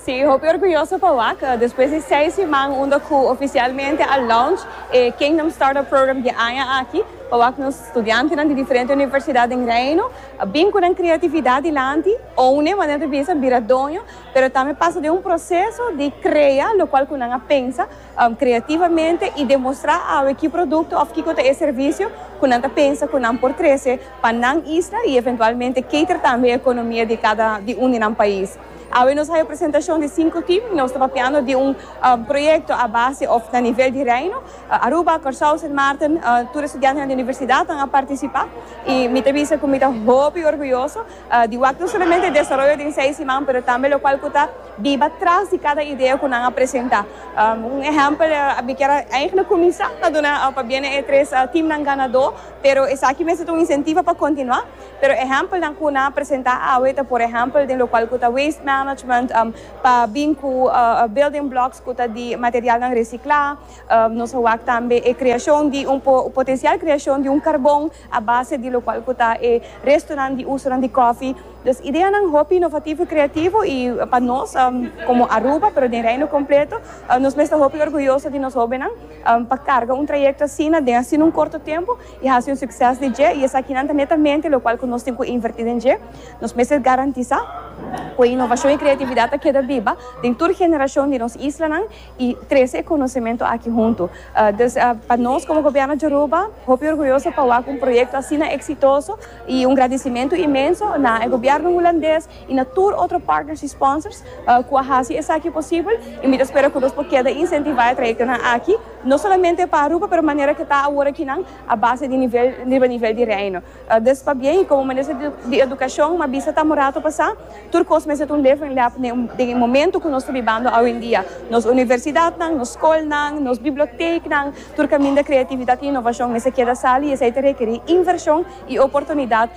Sí, hopi orguyoso pa wak. Despues di seis siman unda cu oficialmente a launch e Kingdom Startup Program di aña aki, pa wak nos studiantenan di diferente universidad den Reino a bin cu nan creatividad dilanti, own'e, manera ta bisa, bira doño, pero tambe pasa den un proceso di crea locual cu nan a pensa creativamente y demostra awe ki producto of kico ta e servicio cu nan ta pensa cu nan por trece pa nan isla y eventualmente cater tambe e economia di cada di un di nan pais. Awe nos haya presentacion di cinco team. Nos ta papiando di un proyecto a base of na nivel di Reino. Aruba, Corsou, Sint Maarten, tur e studiantenan di universidad tan a participa. Y mi ta bisa cu mi ta hopi orguyoso di wak no solamente desaroyo den seis siman pero tambe locual cu ta biba tras di cada idea cu nan a presenta. Un ehempel a bikier a eigenlijk cuminsa na duna pabiene e tres teamnan ganador pero esaki mes ta un incentivo pa continua. Pero ehèmpelnan ku nan a presentá awe ta por ehèmpel den lokual ku ta waste management pa bin ku building blocks ku ta di materialnan resiklá. Nos a wak tambe e kreashon di un potensial kreashon di un karbon a base di lokual ku ta e restonan di usonan di kòfi. Dus ideanan hopi inovativo i kreativo i pa nos komo Aruba pero den Reino kompleto nos mester hopi orguyoso di nos hóbennan pa karga un trayekto asina den asina un korto tempu. I hasi un sukses di dje, i esakinan ta netamente lokual ku nos tin ku invertí den dje. Nos mester garantisá ku e inovashon i kreatividat ta keda biba den tur generashon di nos islanan i trese e konosementu aki huntu. Dus, pa nos komo Gobièrnu di Aruba, hopi orguyoso pa wak un proyekto asina eksitoso i un gradisimentu inmenso na e Gobièrnu hulandes i na tur otro partners i sponsors ku a hasi esaki posibel i mi ta spera ku nos por keda insentivá e trayektonan aki No solamente pa Aruba pero manera ke ta awor akinan a base di nivel riba nivel di Reino. Des pa bien y como minister di educacion m'a bisa ta morato pasa, tur cos mester ta un lef en lef den e momento cu nos ta bibando awendia. Nos universidadnan, nos scolnan, nos biblioteeknan, tur caminda creatividad y innovacion mester keda sali y esei ta rekeri inversion y oportunidad